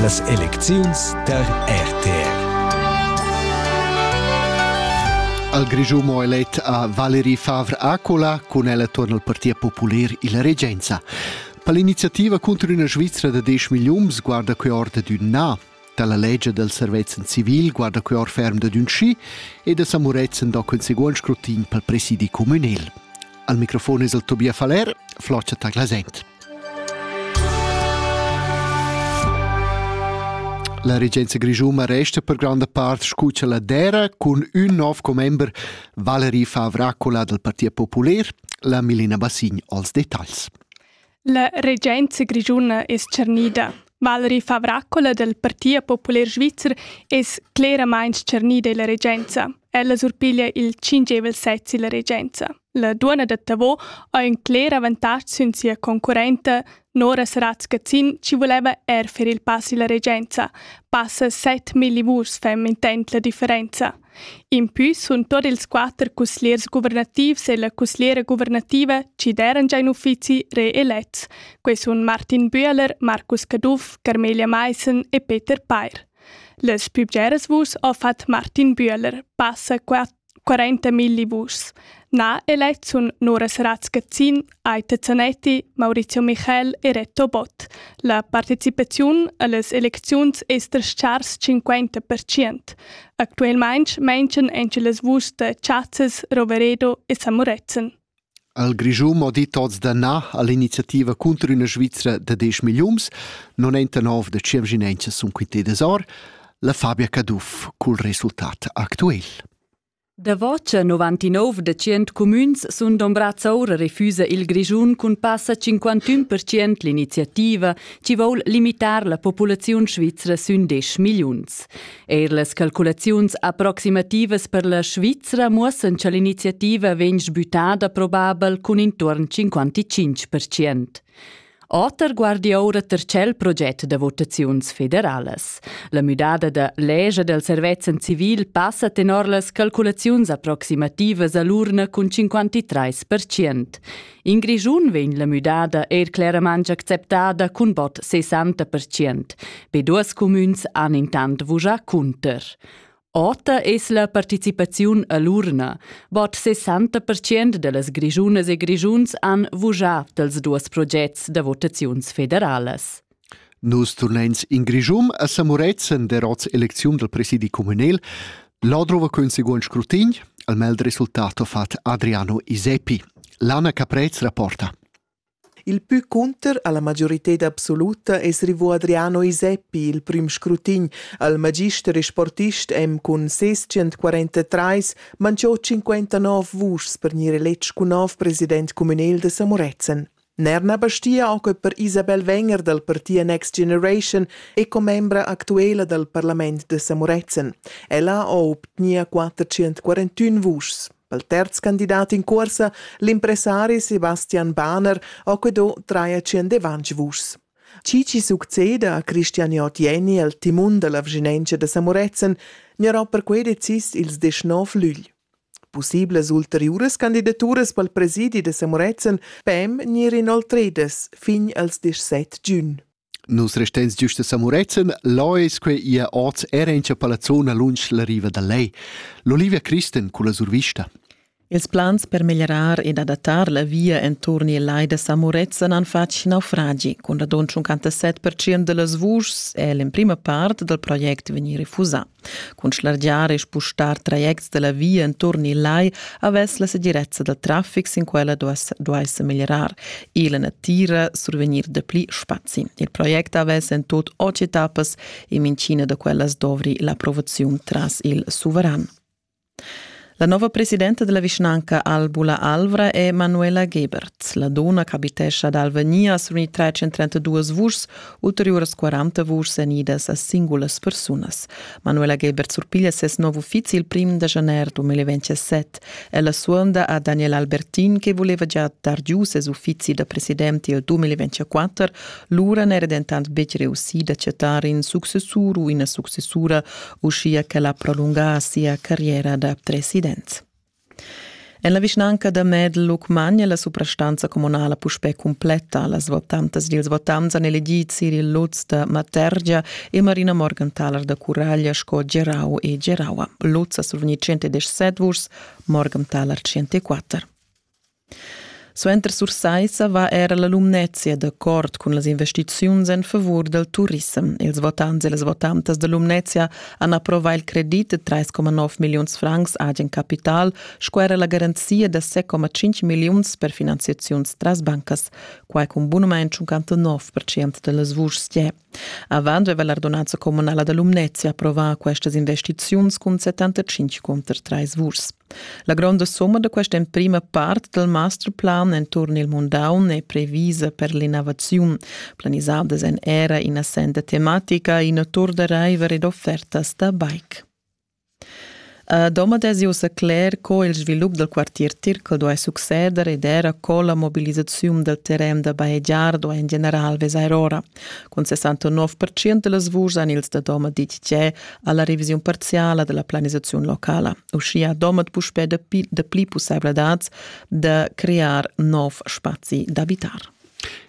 Las elecziuns tar RTR. Al Grischumo elet a Valeri Favre Acola cun el attorno al Partit Popular illa regenza. Per l'iniziativa contro üna Svizra da 10 milliuns guarda que ord d'ün na. Dalla legia del servezzan civil guarda quei or ferm dad ün schi e da Samuretzen do quel seguond scrutin pel presidi communal. Al microfon es el Tobias Faller, Floccia Taglasent. La regenza grischuma resta per granda part scuccia la dera cun ün nov commember Valery Favracola del Partit Popular, la Milena Bassin als detagls. La regenza grischuna es tschernida. Valerie Favracola dal Partit populer svizzer es cleramaing tschernida illa regenza. Ella surpiglia il tschingevel sez illa regenza. La duonna da Tavò ha ün cler avantatg sün sia concurrenta Nora Saratz-Gazzin chi voleva er fer il pass illa regenza. Passa 7 milli vurs fa mintent la differenza. Impü sun tuot ils quatter cusgliers guvernativs e la cusgliera guvernativa chi d'eran già in uffizi reelets. Quai sun Martin Bühler, Marcus Caduff, Carmelia Maissen e Peter Peir. Las pü bgeras vuschs ho fat Martin Bühler, passa 40 milli vuschs. Na elets sun Nora Sarac-Cazzin, Aita Zanetti, Maurizio Michel e Reto Bott. La participaziun a las elecziuns es das-chars 50%. Actuelmaing manchan anche las vuschs da chazzas Roveredo e San Murezzan. Al Grischun ho dit oz da na all'iniziativa cunter üna Svizra da 10 milliuns, 99 da ciemginenchas sun quitedas or, la Fabia Caduff cul resultat actuel. Davo cha 99 da tschient cumüns sun dombrats oura refüsa il Grischun cun passa 51% l'iniziativa chi voul limitar la populaziun svizra sün 10 milliuns. Eir las calculaziuns approximativas per la Svizra muossan cha l'iniziativa vegn sbütada probabel cun intuorn 55%. Oter guardi oura ter tschel proget da votaziuns federalas. La müdada da leger del servezzan civil passa tenor las calculaziuns approximativas a l'urna cun 53%. In Grischun vegn la müdada er claramente acceptada cun bot 60%. Be duas cumüns han intant vujà cunter. Ota es la participaziun a l'urna. Bod 60% da las grischunas e grischuns han vugià dals duos progets da votaziuns federalas. Nus turnains in Grischun a Samuretzen der oz elecziun del presidi communal. Là drova quün seguond scrutin, al mel resultato fat Adriano Iseppi. Lana Caprez rapporta. Il pü cunter alla majorited absoluta es rivò Adriano Iseppi il prüm scrutin al magister e sportist M cun ses 143 manchò 59 vuschs per gnir eletg cun nov president cumünel da Samorezen. Ner na bastia oche per Isabel Wenger dal partia Next Generation e commembra actuela dal parlament da Samorezen. Ella ho obtgnia 441 vuschs. pel terz candidat in cuorsa, l'impressari Sebastian Bahner ha que do traiaciendevanch vuschs. Chi chi succeda a Christian Jotieni el timun dalla vginentscha da Samorezen gnarà perquei decis ils deschnov lügl. Possiblas ulteriuras candidaturas pel presidi da Samorezen pem gnir inoltredas fin als 17 giun. Nus restens giust a Samurezzan, là es que ia oz era in cha palazzona lunsch la riva da lei. L'Olivia Christen culla survista. Ils plans per meglierar ed adattar la via enturn il lai da Samurezzan han fatg naufragi. Cun radund 57% da las vuschs è l'emprima part dal project vegnì refusà. Cun schlargiar e spustar trajects dalla via enturn il lai havess la segirezza da traffic sin quella duesse meglierar. E la natira survegnir dapli spazi. Il project havess en tot otg etappas e mincina da quellas dovri l'approvaziun tras il suveran. La nova presidenta della vischnanca Albula Alvra è Manuela Gebert. La dona ch'abitescha ad Alvenia sun i 332 vuschs, ulteriuras 40 vuschs enidas a singulas persunas. Manuela Gebert surpiglia ses nov uffizi il prim da janer 2027. Ella suonda a Daniel Albertin che voleva già dar giu ses uffizi da presidenti il 2024, lura n'era dentant betg reussì d'acceptar in successur u ina successura uschia ch'el ha prolungà sia carriera da president. En la vischnanca da Medluc magna la suprastanza communala puspè cumpletta. Las votantas dils votants han elegì Cyril Lutz da Matergia e Marina Morgenthaler da Curaglia sco gerau e geraua. Lutz ha survegni 117 vuschs, Morgenthaler 104. Suenter Sursaissa va era la Lumnezia d'accord cun las investiziuns en favur dal turissem. Ils votants e las votantas da Lumnezia han approvà il credit de 3,9 milliuns francs agen capital sco era la garanzia da 6,5 milliuns per finanziaziuns tras bancas, quai cun bunament 59% da las vuschs. Avant veva l'ardonanza communala da Lumnezia approvà questas investiziuns cun 75 cunter trais vurs. La gronda somma da questa emprima part dal masterplan enturn il mundaun è previsa per l'innovaziun, planisadas en era ina senda tematica, ina tour da raiver ed offertas da bike. Domat esi ussa cler co il svilup dal quartier Tircal duai succeder ed era co la mobilisaziun dal terren da bajegiar duai en general vesair ora. Cun 69% da las vuschs han ils da Domat ditg tge a la revisiun parziala da la planisaziun locala. Uschia Domat puspè dapli pussaivladads da crear nov spazi d'abitar.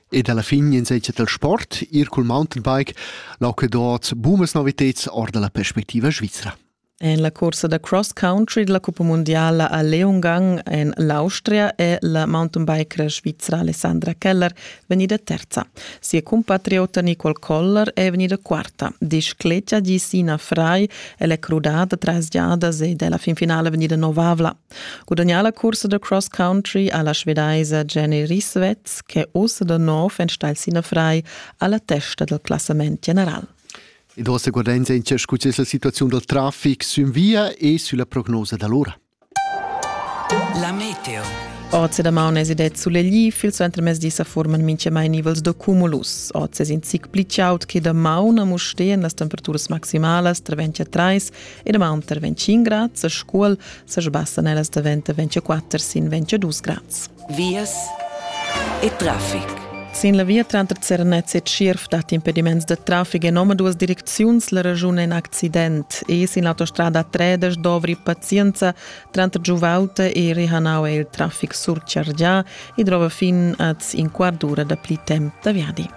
Ed alla fin in segia dal sport, ir cul mountainbike, l'aucedot bumas noviteds or dalla perspectiva svizra. En la cursa da cross country della Cuppa Mondiala a Leongang en l'Austria è la mountainbiker svizra Alessandra Keller vegnida terza. Sia compatriota Nicole Koller è vegnida quarta. Discleta di Sina Fry, ella è crudada tras giadas ed è la finfinale vegnida novavla. Gudagnà la cursa da cross country ha la svedaisa Jenny Risvetz che ussa da nov enstagl sin frai alla testa del classament general. Ed ossa guardains entia scu es la situaziun dal traffic sün via e sülla prognosa da l'ora. La meteo. Oz da maunes ed et sulegli fil suenter mesdi sa forman minche mai nivels da cumulus. Oz es in zic pli chaud che da maun a Mustehen las temperaturas maximalas tra 20 a 30 e damanter 25 grads a Scuol sa sbassan ellas daventa 24 sin 22 grads. Vias e traffic. Sin la via tranter Zernez e Tschierf dat impediments da traffic en omaduas direcziuns la ragiun è in accident e sin l'autostrada Tredes dovri pazienza Tranter giuvaulta e rehanau è il traffic surchargià e drova fin az in quart d'ura da pli temp da viadi.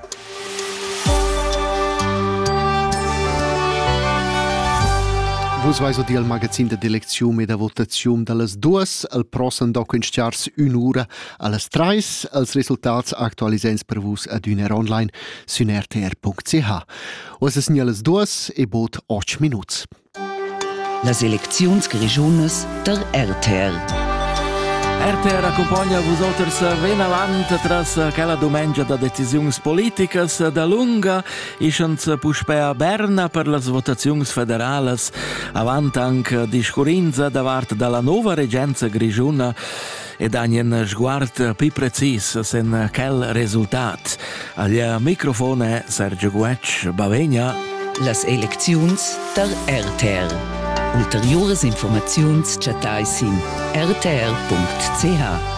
Vus vais dir al magazin de d'eleczium e da votazium dallas duas al prossam documentars un'ura allas treis als resultats aktualisens per vus adüner online sün rtr.ch. Oas es allas duas e bod 8 minuts. Las elecziuns grischunas der RTR. RTR accompagna vus oters vinavant tras quella dumengia da decisiuns politicas da lunga, ischans puspè a Berna per las votaziuns federalas, avant anche di Scurinza da vart dalla nova regenza grischuna e dan in sguard più precis sen quel resultat. Al microfone Sergio Guetsch, Bavegna. Las elecziuns tar RTR. Ulteriuras informaziuns chattai sin rtr.ch.